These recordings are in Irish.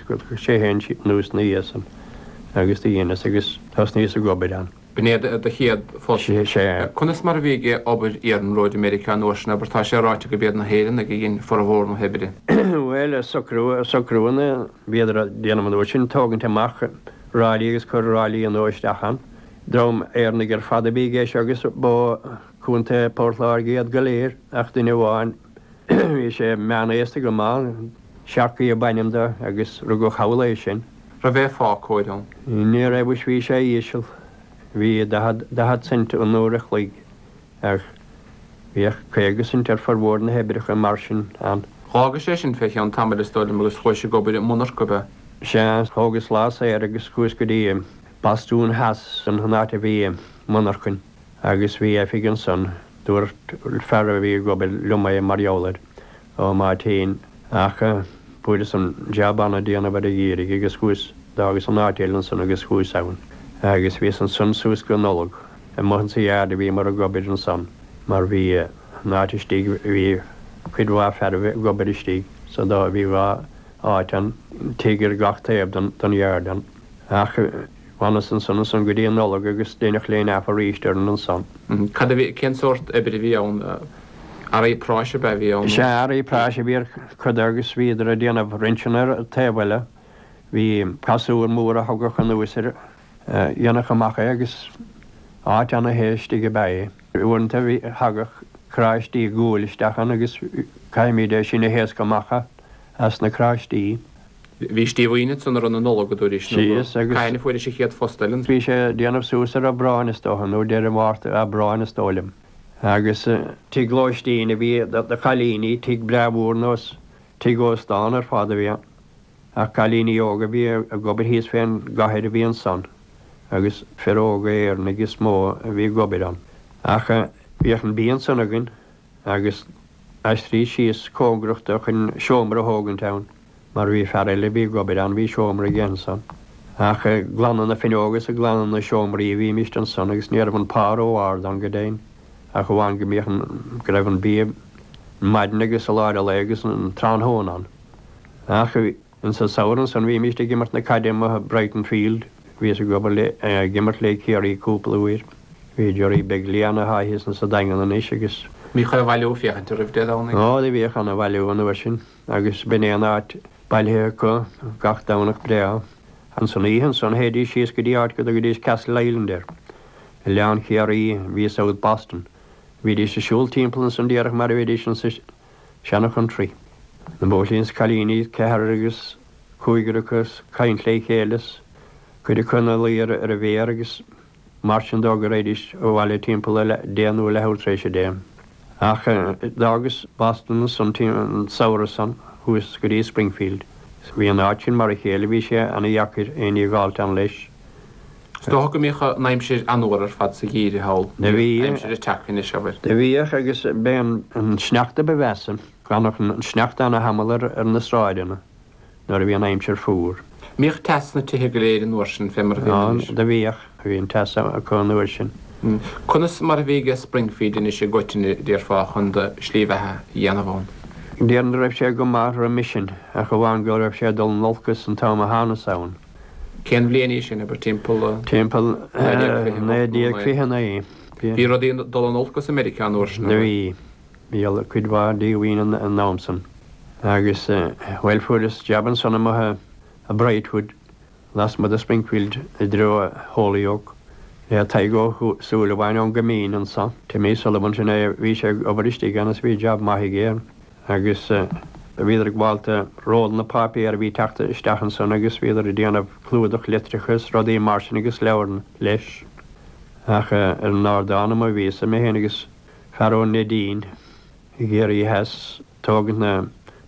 go socróidís anuas ná iadsan agus do dheineas agus thosnaíos ag obair ann. B'in é do chéad phost? Sea. Conas mar a bhí ag obair iarnróid i Meiriceá an uair sin, abair? Tá sé ráite gurb iad na hÉireannaigh a dhein formhór na hoibre. Bhuel, socrú na, bhíodar a' déanamh an uair sin, ag tógaint amach ráillí agus ag cur ráillí nua isteach ann. Dream Éireannach ar fad a bhí i gceist agus ba Contae Phort Láirge iad go léir ach duine amháin, Bhí sé meánaosta go maith, Sharkey ab ainm do agus rugadh thall é sin. An raibh aon phá cóir ann. Ní raibh is bhí sé íseal, bhí daichead cent an uair a chloig air, bhíodh caoga cent ar formhór na hoibreacha mar sin ann. Dh'fhágais é sin fé cheann tamaill is dóigh liom agus chuais ag obair i monarcha ab ea? Sea, thógas lá saor agus chuas go dtí Bostún Theas, sin an áit a bhí an mhonarchain. Agus bhí oifig ansan. Dúirt fear a bhí ag obair liom mar gheall air. Ó, má théinn. Ach fuaireas an jab ann déanamh ar an gCiarraigh agus chuas, d'fhágas an áit eile ansan agus chuas ann. Agus bhíos ansan suas go Nollaig. Amuigh in sa yard a bhíomar ag obair ansan mar bhí an áit istigh, bhí cuid mhaith fearaibh ag obair istigh so bhí dhá áit ann, tigh ar gach taobh den yard ann. Ach. D'fhanas ansan ansan go dtí an Nollaig agus deineadh laying off arís orainn ansan. Cad a bhí, cén sórt oibre a bhí ann, earraí práis ab ea a bhí ann? Sea, earraí práis a bhí ár gcuid agus bhíodar a' déanamh rinseanna ar a' taobh eile. Bhí casúr mór a thagadh anuas air, dhéanadh amach é agus áit ana-the istigh ab ea é. Uaireanta thagadh carráistí guail isteach ann agus chaithimíd é sin a thaoscadh amach. as na carráistí. Bhís díomhaoin ansan ar an Nollaig a dúraís nó go síos agus cathain a fuairis an chéad phost eile. Bhí sé ag déanamh suas ar Aibreán is dócha nó deireadh Márta, Aibreán is dóigh liom. Agus. Tigh lóistín a bhí do chailíní, tigh breá mhór nós, tigh ósta ar fad a bhí ann. Ach cailíní óga a bhí ag obair thíos fén gcathair a bhí ansan agus fir óga Éireannaigh is mó a bhí ag obair ann. Ach bhíodh an bia ansan againn. agus aistríos síos cóngarach do chun seomra a thógaint ann, mar bhí fear eile a bhí ag obair ann, bhí seomra aige ansan. Ach ag glanadh na bhfinneoga is ag glanadh na seomraí a bhímíst ansan agus ní raibh an pá ró árd ann go deimhin ach amháin go mbíodh an, go raibh an bia ar maidin agus i lár an lae agus an tráthnóna ann. Ach. An samhradh san bhímíst ag imirt na caide amuigh i Brighton Field. Bhíos ag obair le, ag imirt le Ciarraí cúpla uair. Bhí Jerry beag liath ann atá thíos insa Daingean anois agus. Bhí ana-bhailiú ag féachaint oraibh Dé Domhnaigh. Ó, do bhíodh ana-bhailiú an uair sin agus b'in é an áit bailithe acu gach Domhnach breá. Insan oíche ansan théidís síos go dtí áit go dtugaidís Castle Island air. Oileán Chiarraí i South Boston. Bhídís a siúl timpeall ansan díreach mar a bheidís ansa. Seana Chontraí. Na Bóithrín 's Cailíní 's ceathrar agus Cúigear acu ag caint le chéile 's cuid acu 'na luí ar an bhféar agus mar sin nó go raghaidís abhaile timpeall a deich nó a leathuair tréis a deich. Ach d'fhágas Boston ansan an Samhradh san chuas go dtí Springfield 's bhí an áit sin mar a chéile bhí sé ana dheacair éinní a dh'fháilt ann leis. Is dócha go mbíodh an aimsir an-fhuar ar fad sa gheimhridh thall, níl aimsir ag teacht anois, abair. Do bhíodh agus b'é an sneachta ba mheasa, d'fhanadh an sneachta ana-thamall ar na sráideanna nuair a bhí an aimsir fuar. An mbíodh teas sna tithe go léir an uair sin fé mar a bhíonn anois? Ó, do bhíodh, bhí an teas acu an uair sin. Conas mar a bhí ag Springfield anois i gcoitinne, déarfá, chun do shlí bheatha a dhéanamh ann? Déarfainn go raibh sé go maith roimis sin, ach amháin go raibh sé ag dul in olcas an t-am a thánas ann. Cén bhliain í sin, abair, timpeall. Timpeall 1929. Bhí rudaí ag dul in olcas i Meiriceá an uair sin, an. Do bhí. Bhí cuid mhaith díomhaoin an t-am san agus, bhuel, fuaireas jab ansan amuigh i mBrightwood lasmuigh de Springfield i dtreo Holyoke le Tadhg Ó Súilleabháin ón gCoimín anseo, Timmy Sullivan, sin é a bhí sé ag obair istigh ann agus bhí jab maith aige. agus bhíodar ag baint rollanna páipéar a bhí teacht isteach ansan agus bhíodar ag déanamh clúdach litreacha is rudaí mar sin agus leabhar leis ach ar an ardán amuigh a bhíosa, mé féin agus fear ón Neidín, i gCiarraí Theas tógaint na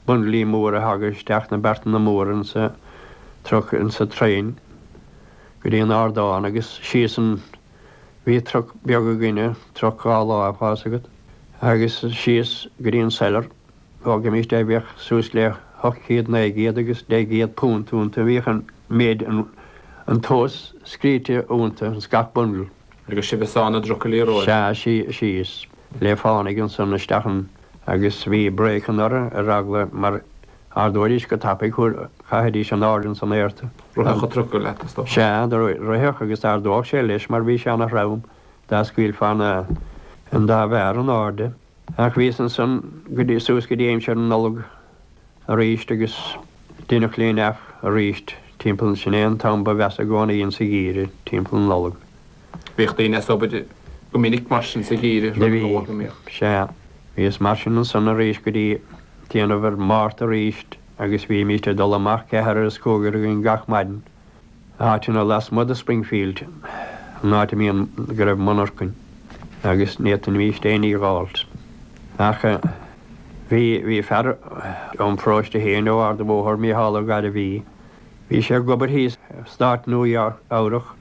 bundlaí móra a thagadh isteach, na beartanna móra insa truck insa traein go dtí an ardán agus síos an. Bhí truc beag againne, truc dhá lámh, tá fhios agat agus síos go dtí an cellar. Thógaimis de, bhíodh suas le hocht chéad, naoi gcéad agus deich gcéad púnt iontu. Bhíodh an méid, an tomhas, scríte iontu ins gach bundle. Agus sibh ag sá na dtrucailí romhaibh. Sea, síos le fánaidh ansan isteach ann agus bhí brakeanna orthu ar eagla mar ardóidís go tapaidh thú chaithfidís in airde ins an aer thú. Rithfeadh an trucail leat, is dócha? Sea, do rithfeadh agus d'ardódh sé leis mar bhí sé ana throm dá scaoilfeá na an dá bharra in airde. Ach bhíos ansan go dtí suas go dtí aimsir na Nollag aríst agus deineadh laying off aríst timpeall sin é an t-am ba mheasa i gcónaí insa gheimhreadh timpeall na Nollag. Bhíodh daoine as obair go minic mar sin sa gheimhreadh roimh an Nollaig, an ea. Sea, bhíos mar sin ansan arís go dtí déanamh ar Mhárta arís agus bhímíst ag dul amach ceathrar agus cúigear againn gach maidin, áiteanna lasmuigh de Springfield, an áit a mbíonn, go raibh monarchain agus n'fhéadfaimíst éinní a dh'fháilt. Ach bhí, bhí fear óm pharóiste féin ó Ard a' Bhóthair, Mícheál Ó Gairbhí, bhí sé ag obair thíos i Stát Nua-Eabhrac,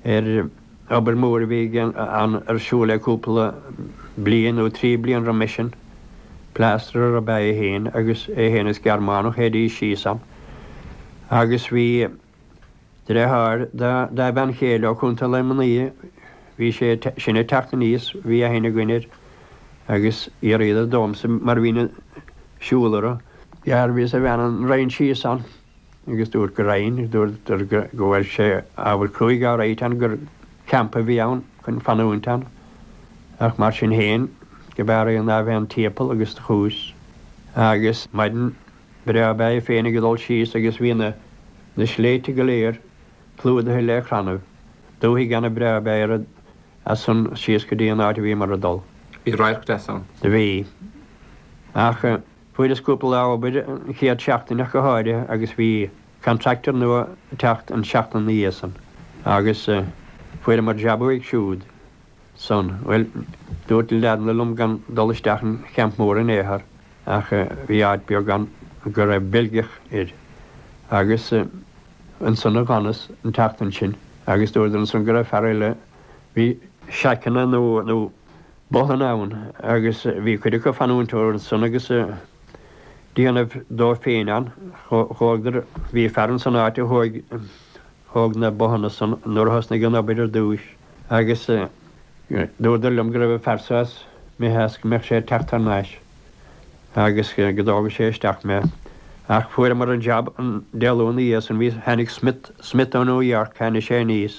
ar obair mhór a bhí ar siúl le cúpla bliain nó trí bliana roimis sin. Plástarar ab ea é féin agus é féin is Gearmánach théidís síos ann agus bhí dreatháir dá bhean chéile ó Chontae Luimnigh, bhí sé sin ag teacht aníos, bhí aithne againn air agus fhiafraíodar domhsa mar bhínn ag siúl orthu. Dhearbhaíos a bhean an raghainn síos ann. agus dúrt go raghainn agus dúirt go bhfuil sé ábhar cruaidh á ráit ann gur campa a bhí ann chun fanúint ann ach mar sin féin go b'fhearr é ná a bheith timpeall agus do chuas agus maidin breá ab ea é féin ag dul síos agus bhí na na sléibhte go léir clúdaithe le crannaibh dúthaigh ana-bhreá ab ea í as san síos go dtí an áit a bhíomar ag dul. Bhí radharc deas ann. Bhí. Ach. Fuaireas cúpla lá obair an chéad seachtain ach go háirithe agus bhí contractor nua ag teacht an seachtain ina dhiaidh san agus fuaireamar jab uaidh siúd san. Bhuel, dúirt na leaideanna liom gan dul isteach an champ mór in aon chor ach bhí áit beag ann go raibh Beilgeach air agus ansan a d'fhanas an tseachtain sin agus dúradar ansan go raibh fear eile a bhí seaiceanna nó botháin ann, agus bhí cuid acu ag fanúint ansan agus ag déanamh dóibh féin ann, chuadar, bhí fear ann san áit a thóig thóg na bothanna san nuair a thosnaigh an obair ar dtúis agus dúradar liom go raibh an fear so imithe as go mbeadh sé ag teacht thar n-ais agus go dtógfadh sé isteach mé ach fuaireamar an jab an Dé Luain ina dhiaidh san bhí tháinig Smith Smith ó New York tháinig sé aníos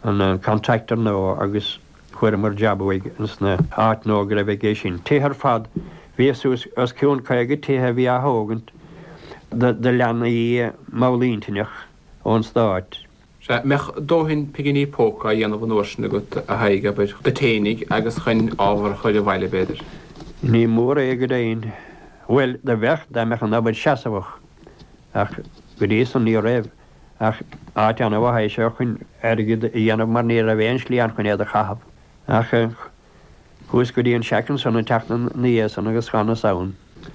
an contractor nua agus Fuaireamar jab uaidh ins an áit nua go raibh aige sin. Tithe ar fad, bhí suas os cionn caoga tithe a bhí á thógaint do leanaí mallintinneach ón Stáit. Sea, mbeadh dóthain pigíní póca á dhéanamh an uair sin agat, a Thaidhg, abair, duit fhéinig agus chun ábhar a chur abhaile, b'fhéidir. Ní mór é go deimhin. Bhuel, do bheadh, dá mbeadh an obair seasamhach, ach go dtí san ní raibh. ach áit ana-mhaith é seo chun airgead a dhéanamh mar ní raibh aon slí ann chun é a chaitheamh ach chuas go dtí an seaic ansan an tseachtain ina dhiaidh san agus d'fhanas ann.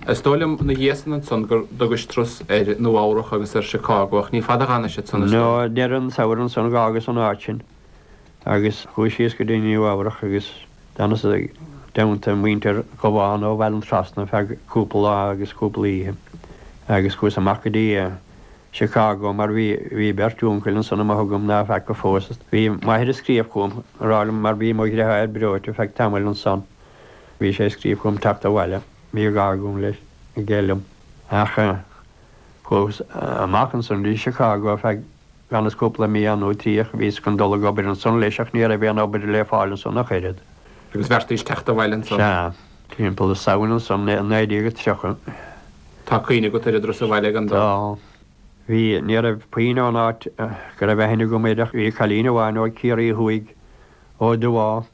Is dóigh liom ina dhiaidh san ansan gur thugais turas ar Nua Eabhrach agus ar Chicago ach ní fada a d'fhanais ansan is dóigh. Nó deireadh an tsamhraidh ansan dh'fhágas an áit sin agus chuas síos go dtí Nua Eabhrach agus d'fhanas i dteannta muintir Dhubháin ó Bhaile an Trasna feadh cúpla lá agus cúpla oíche agus chuas amach go dtí Chicago mar bhí, bhí beirt úncail ansan a mba thugam ná feaca fós. Bhí m'athair ag scríobh chugam á rá liom mar bhí mo dheartháir breoite feadh tamaill ansan. Bhí sé ag scríobh chugam teacht abhaile, bhí gá agam leis, aige liom. Ach chuaghas amach ansan go dtí Chicago agus dh'fhanas cúpla mí ann nó trí ach bhíos chun dul ag obair ansan leis ach ní raibh aon obair le fáil ansan ach oiread. Agus bheartaís teacht abhaile ansan? Sea. Timpeall na Samhna na Samhna i 1930. Tá cuimhne agat ar an dturas abhaile gan dabht? Tá. Bhí. Ní raibh puinn ón áit go raibh aithne agam air ach bhí cailín amháin ó Chiarraí Thuaidh, ó Dhubháth,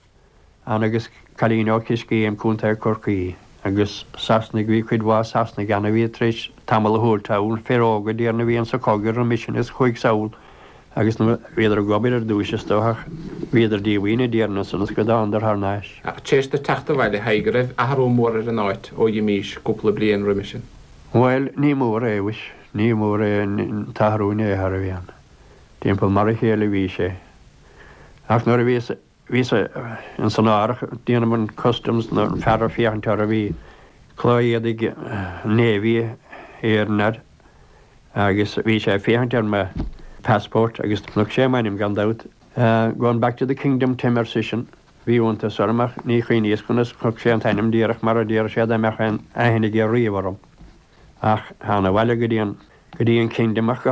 ann agus cailín ó Chiscéim, Co. Corcaí. Agus Sasnaigh, bhí cuid mhaith Sasnaigh ann a bhí tar éis tamall a thabhairt thall, fir óga, déarfainn a bhí ann sa chogadh roimis sin is chuaigh sall, agus nuair a bhíodar ag obair ar dtúis is dócha bhíodar díomhaoin déarfainn ansan is go dtánadar thar n-ais. Ach tar éis duit teacht abhaile a Thaidhg an raibh athrú mór ar an áit ó dh'imís cúpla bliain roimis sin. Bhuel, ní mór é, mhuis, ní mór é an t-athrú in aon chor a bhí ann. Timpeall mar a chéile a bhí sé. Ach nuair a bhíos Bhíos ins an árthach ag déanamh an Customs nuair an fear ag féachaint orthu bhí culaith éadaigh Navy Éireann air agus bhí sé ag féachaint ar mo passport agus chonaic sé m'ainm gan dabht. Going back to the Kingdom Tim ar seisean. Bhí iontas orm ach ní chuimhníos conas chonaic sé an t-ainm díreach mar a déarfadh sé dá mbeadh aon aithne aige riamh orm ach thána abhaile go dtí an go dtí an Kingdom ach go